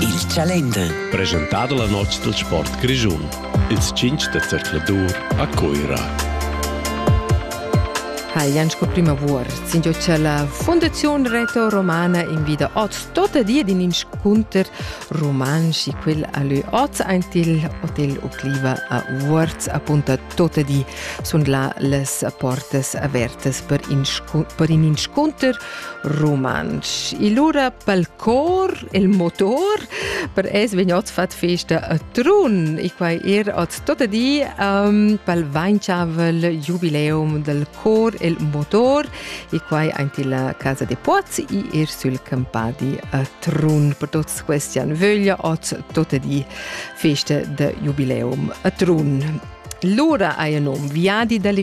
Il Chalender. Presentà da la notg dal sport grischun. Ils tschintg da zercladur a Cuira. Hajan sco primavor sindio che la Fondazione Reto Romana invida oz tota di in inscunter romansch quel a lü oz aint il Hotel Ocliva a Vuorz appunta tota di sun là las portas avertas per, inscun per in inscunter rumantsch. Il lura pel cor, il motor, per es vegnot fat festa a Trun e quai er oz tota di um, pel vainchavel jubileum del cor il motor e quai aint illa casa de Poz e er sul campadi a Trun. Per tots questi an vöglia oz tota di festa de jubileum a Trun. Lura hai il nom Viadi delle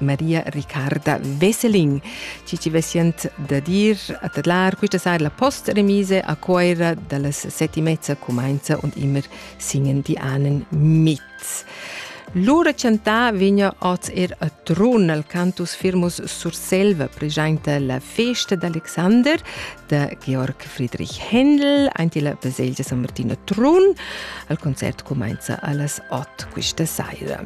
Maria Riccarda Vesselin, ci ci vesient da dir a tadlar quista sera la post-remise a Coira dallas sette e mezza cumainza und immer singen die Ahnen mit. Lura chantà vegna oz er a Trun al cantus Firmus Surselva presenta la festa d'Alexander da Georg Friedrich Händel aint la baselgia San Martino Trun. Al concert cumainza allas 8 questa sera.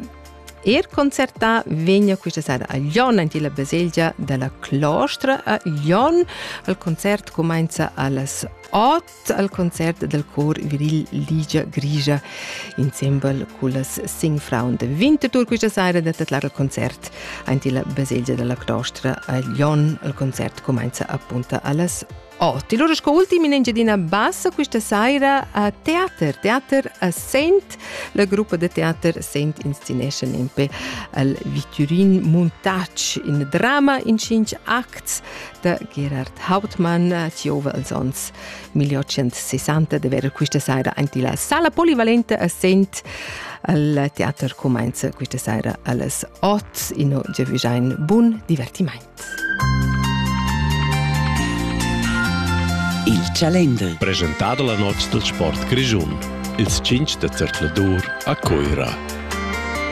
Er concertà vegna questa sera a Lyon en la baselgia dalla Clostra a Lyon. Il concert cumenza allas 8 al concert del cor viril Ligia Grigia insieme con las Singfrauen de Winterthur questa sera da titlar il concert en la baselgia della Clostra a Lyon. Il concert cumenza appunto allas Oh, ti lura sco ultim in Engiadina Bassa questa saira a Teater. Teater a Sent. La gruppa de teater Sent inscenesce nempe al Viturin Montage in drama in cinc acts da Gerhard Hauptmann ziova als ons 1860 de vera questa saira anti la sala polivalente a Sent al Teater comenza questa saira alles 8 in Gevijain. Buon divertimento. Il Chalender. Presentado la noz dal sport grischun. Ils tschinch da zercladur a Cuira.